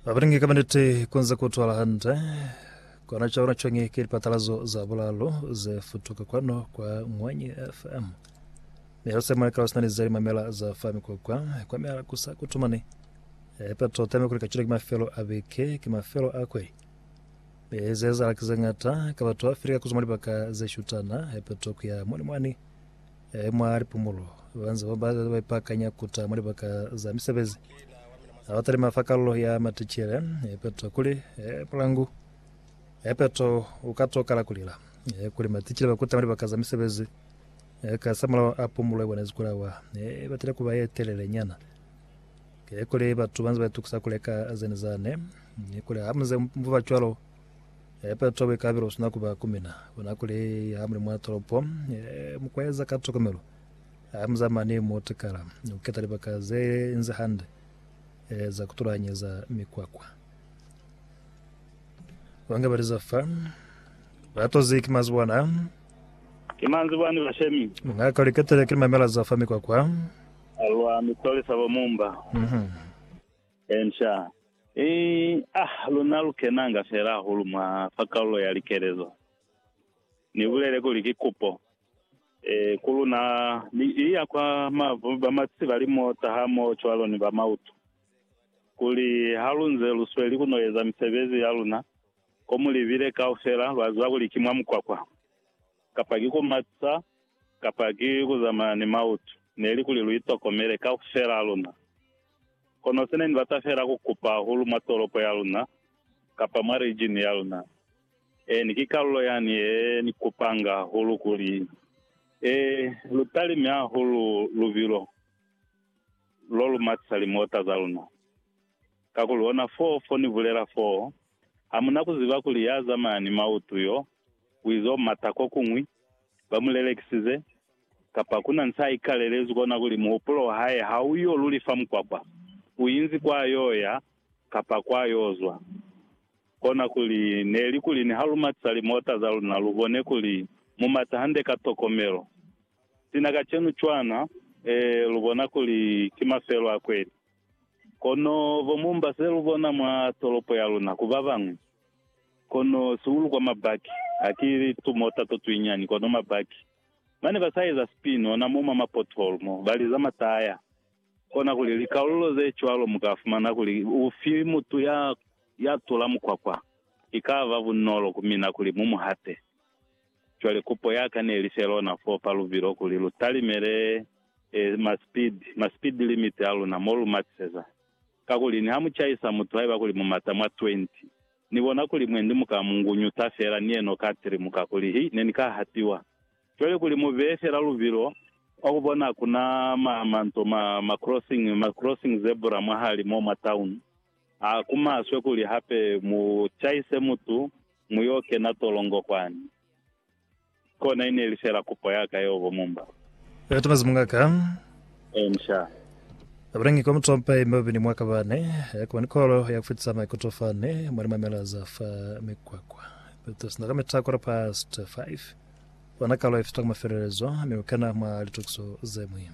Babalingi ka maniti kunze kutwala hande kona cha ona chongi ke dipatalazo za bulalo ze futuka kwano kwa Ngwanyi FM me ho semana ka usina lizali mamela za fami kwa kwa kwa mela kusa kutumani e pato tame kuli kachile ke mafelo a beke ke mafelo a kwe me ze za kize ngata ka batho Afrika kuzuma libaka ze shutana e pato kuya moni mwani E mwa lipumulo, banze ba ba ba ipakanya kuta mwa libaka za misebezi a ba talima fa kalulo ya maticele. E peto kuli, e pulangu, e peto u ka to kala kulila. E kuli maticele ba kuta mwa libaka za misebezi e ka sa mulao a pumulo ya bona zikulawa e batile kuba ye telele nyana. E kuli batu banze ba itukusa kuleka zene zane. E kuli ha muze muba cwalo, E, Petro wa ikabela usina kuba ku mina. Ona kuli ha muli mwa tolopo, e, mukueza ka tokomelo. Ha muza mani mo tekala, ni kuketa libaka ze nzi hande, e, za kutulanyeza mikwakwa. Banga bali za fa, batozi ki mazuba na. Ki manzibwa ni bashemi. Mungaka uli ketele ki limamela za fa mikwakwa. Alwa mitolisa bo mumba. Mhm. Inca. I, Ah, luna lu kenanga fela hahulu mwa fa kalulo ya likelezo. Ni bulele kuli ki kupo, e, ku luna, mi i ya kwa ma, ba masi ba limota ha moho cwalo ni ba mauto, kuli ha lu nze lu sweli ku no eza misebezi ya luna ko mu libile kaufela, lwa ziba kuli ki mwa mukwakwa, kapa ki ku matisa, kapa ki ku zamaya ni mauto, neli kuli lu itokomele, kaufela ha luna. Kono se ne ni bata feela ku kupa hahulu mwa tolopo ya luna, kapa mwa region ya luna. Eeni, ki kalulo yani ye ni kupanga hahulu kuli, Ee, lu talime hahulu lubilo lo lu matisa limota za luna. Kakuli ona foo fo ni bulela foo, ha mu na ku ziba kuli ya zamaya ni mautu yo, u izo mata ko kuñwi, ba mu lelekisize, Kapa kuna nsaikalelezi kona kuli muhupulo wahae hauyo luli fa mukwakwa, uinzi kwayoya kapa kwayozwa. Kona kuli neli kuli nihalumatisa limota zaluna lubone kuli mumata hande ka tokomelo. Sina kacenu cwana, ee, lubona kuli ki mafelo a kweli. Kono bomumba selubona mwa tolopo yaluna ku babañwi, kono sihulu kwa mabaki, haki tumota totwinyani, kono mabaki. Bane ba sa eza sipino na mo mwa mapothole mo ba liza mataya. Kona kuli likalulo ze cwalo mu ka fumana kuli ufi mutu ya ya tula mukwakwa, ki ka ba bunolo ku mina kuli mu mu hate. Cwale kupo ya ka ne li fe lona foo fa lubilo kuli lu talimele eh, ma speed, ma speed limit a luna mo lu matiseza. Kakuli niha mu caisa mutu haiba kuli mu mata mwa 20, Ni bona kuli mwe ndi muka mu ngunyusa fela ni yeno ka tiri muka kuli hi ne ni ka hatiwa. Cwale kuli mu beye fela lubilo kwa ku bona ku na ma, ma nto ma, ma crossing, ma crossing zebra mwahali mo mwa town. Ha ku maswe kuli hape mu caise mutu mu yo kena tolongo kwani. Kona ineli fela kupo yaka yeo bo Mumba. Yatumezi mungaka. Ensha. Abulangi kwa mutompa ye mabapi ni mwaka bane ya kuba ni kolo ya kufitisa maikuto fane mwa limamela za fa mikwakwa. Petros na ka mita quarter past five. Bona kalo ye fita ku mafelelezo mi ukena mwa litokiso zemwi.